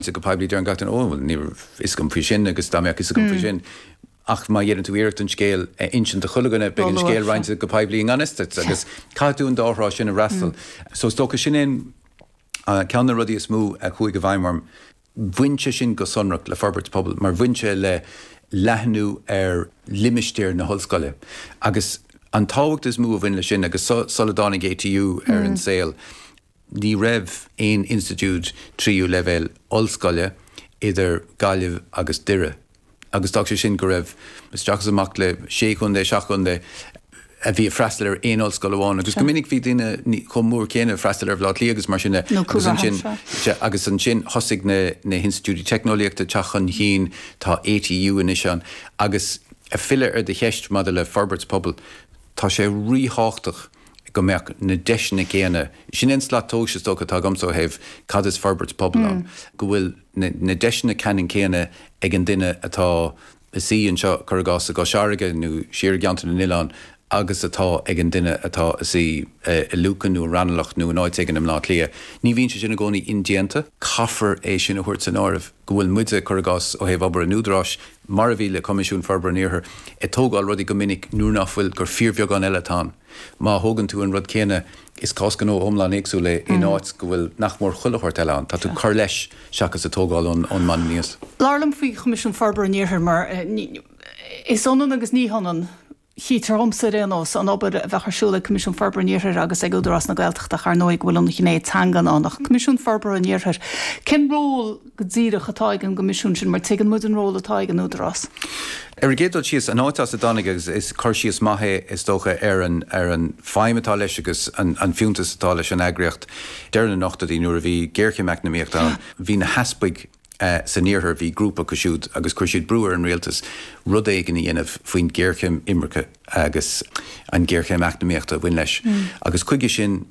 Sea, go poiblí deireann gach duine, 'Ó, bhuel, níl fhios agam faoi sin, agus dá mbeadh fhios agam faoi sin. Ach má dheineann tú iarracht an scéal a inseacht do chuile dhuine, beidh an scéal roinnte go poiblí i ngan fhios duit, agus caithfidh tú an dá thrá sin a fhreastal. So is dócha sin é ceann de na rudaí is mó a chuaigh i bhfeidhm orm. Bhain sé sin go sonrach le forbairt pobail, mar bhain sé le leathnú ar limistéar na hollscoile, agus an tábhacht is mó a bhain leis sin, agus sula dtáinig ATU ar an saol, Ní raibh aon institiúid tríú leibhéal ollscoile idir Gaillimh agus Doire agus d'fhág sé sin go raibh isteach is amach le sé chontae, seacht gcontae a bhí ag freastal ar aon ollscoil amháin agus go minic bhí daoine chomh mór céanna ag freastal ar Bhaile Átha Cliath agus mar sin de agus ansin thosaigh na hinstitiúidí teicneolaíochta ag teacht chun chinn, tá ATU anois ann agus ag filleadh ar do cheist maidir le forbairt pobail, tá sé ríthábhachtach. go mbeadh na deiseanna céanna, sin é an slat tomhais is dócha atá agamsa ó thaobh cad is forbairt pobail ann, go bhfuil na deiseanna ceannann céanna ag an duine atá ina shuí anseo, cuir i gcás, i gCois Fharraige nó siar i gCeantar na nOileán agus atá ag an duine atá ina shuí i Lucan nó i Raghnallach nó in áit éigin i mBleá Cliath. Ní bhíonn sé sin i gcónaí indéanta. Caithfear é sin a thabhairt san áireamh, go bhfuil muide, cuir i gcás, ó thaobh obair an Údaráis, mar a bhí le Coimisiún Forbartha an Iarthair, ag tógáil rudaí go minic nuair nach bhfuil, gur fíorbheagán eile atá ann. Má thógann tú an rud céanna, is cás gnó iomlán éagsúil é in áit go bhfuil nach mór chuile shórt eile ann, tá tú cur leis seachas a tógáil ón mbonn aníos. Labhair liom faoi Choimisiún Forbartha an Iarthair mar, is ionann agus ní hionann. Cítear dhomsa ar aon nós, an obair a bheadh ar siúl ag Coimisiún Forbartha an Iarthair agus ag Údarás na Gaeltachta, ach ar ndóigh go bhfuil an ghné teangan ann ach an Coimisiún Forbartha an Iarthair, cén ról go díreach atá ag an gCoimisiún sin, mar tuigeann muid an ról atá ag an Údarás? Ar an gcéad dul síos, an áit as a dtáinig agus is cur síos maith é is dócha ar an ar an feidhm atá leis agus an an fiúntas atá leis an eagraíocht deireadh na n-ochtóidí nuair a bhí géarchéim eacnamaíochta ann, bhí na heaspaig. san Iarthar bhí grúpa acu siúd agus chuir siad brú ar an rialtas rud éigin a dhéanamh faoin ghéarchéim imirce agus an ghéarchéim eacnamaíochta a bhain leis agus chuige sin,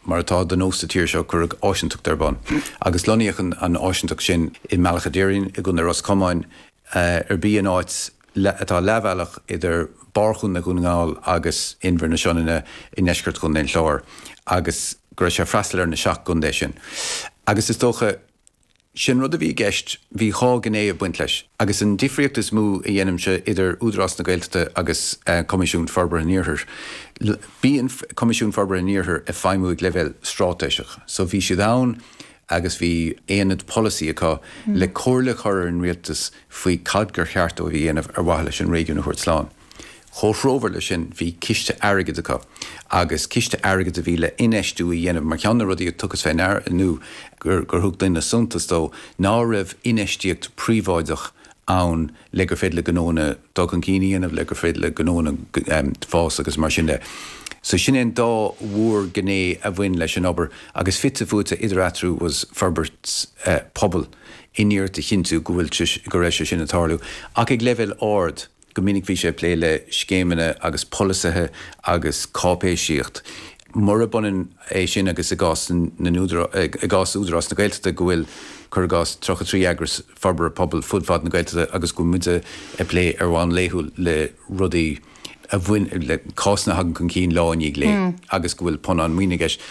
mar atá de nós sa tír seo, cuireadh áisinteacht ar bun agus lonnaíodh an áisinteacht sin i mBealach a' Doirín i gContae Ros Comáin ar bith, in áit atá leathbhealach idir barr Chontae Dhún na nGall agus Inbhir na Sionainne i ndeisceart Chontae an Chláir agus go raibh sé ag freastal ar na seacht gcontae sin agus is dócha. Sin rud a bhí i gceist, bhí dhá ghné ag baint leis. Agus an difríocht is mó a dhéanaimse idir Údarás na Gaeltachta agus Coimisiún Forbartha an Iarthair, bíonn Coimisiún Forbartha an Iarthair ag feidhmiú ag leibhéal stráitéiseach. So bhí siad ann agus bhí aonad polasaí acu le comhairle a chur ar an rialtas faoi cad gur cheart dóibh a dhéanamh ar mhaithe leis an réigiún a thabhairt slán. Comhthreomhar leis sin, bhí ciste airgid acu agus ciste airgid a bhí le infheistiú a dhéanamh mar cheann de na rudaí a tugadh fé ndear nó gur thug daoine suntas dó ná raibh infheistíocht príobháideach ann le gur féidir le gnóanna dul chun cinn a dhéanamh, le gur féidir le gnóanna fás agus mar sin de. So sin é an dá mhór ghné a bhain leis an obair agus fite fuaite idir eatarthu was forbairt pobail in iarracht a chinntiú go bhfuil sé, go raibh sé sin ag tarlú ach ag leibhéal ard. Go minic bhí sé ag plé le scéimeanna agus polasaithe agus cáipéisíocht. Murab ionann é sin agus i gcás na n-údarás, i gcás Údarás na Gaeltachta go bhfuil, cuir i gcás, 33 eagras forbartha pobail fud fad na Gaeltachta agus go bhfuil muid ag plé ar bhonn laethúil le rudaí a bhain, le cásanna a thagann chun cinn lá i ndiaidh lae agus go bhfuil punann maoine i gceist.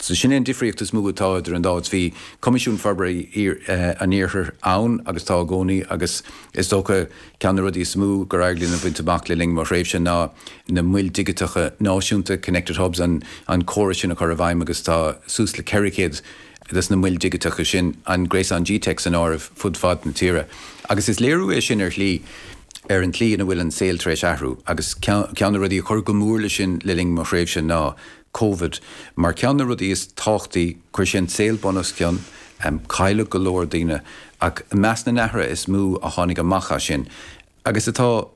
So sin é an difríocht is mó atá idir an dá áit. Bhí Coimisiún Forbartha an Iarthair ann agus tá i gcónaí agus is dócha, Ceann de na rudaí is mó gur éirigh linn a bhaint amach le linn mo thréimhse ná na Moil Dhigiteacha Náisiúnta, Connected Hubs, an córas sin a chur i bhfeidhm agus tá suas le 400 de na Moil Dhigiteacha sin, an Gréasán G-teic san áireamh, fud fad na tíre. Agus is léiriú é sin ar shlí ar an tslí ina bhfuil an saol tar éis athrú agus ceann de na rudaí a chuir go mór leis sin le linn mo thréimhse ná Covid. Mar ceann de na rudaí is tábhachtaí, chuir sé an saol bunoscionn, cailleadh go leor daoine, ach i measc na n-athruithe is mó a tháinig amach as sin, agus atá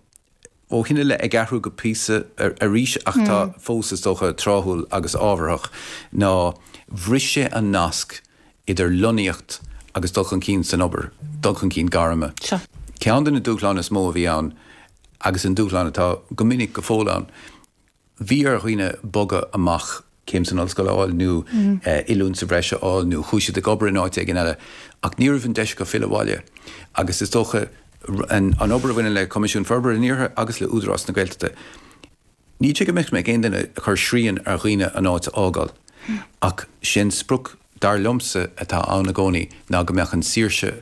ó shin i leith ag athrú go píosa arís ach atá fós, is dócha, tráthúil agus ábharthach, ná bhris sé an nasc idir lonnaíocht agus dul chun cinn san obair, dul chun cinn gairme. ceann de na dúshláin is mó a bhí ann agus an dúshlán atá go minic go fóill ann. bhí ar dhaoine bogadh amach, céim san ollscoil a fháil nó oiliúint sa bhreis a fháil nó chuaigh siad ag obair in áit éigin eile ach ní raibh an deis acu filleadh abhaile agus is dócha an obair a bhaineann le Coimisiún Forbartha an Iarthair agus le Údarás na Gaeltachta. Ní hé go mbeadh mé ag aon duine ag cur srian ar dhaoine an áit a fhágáil ach sé'n sprioc dar liomsa atá ann i gcónaí ná go mbeadh an saoirse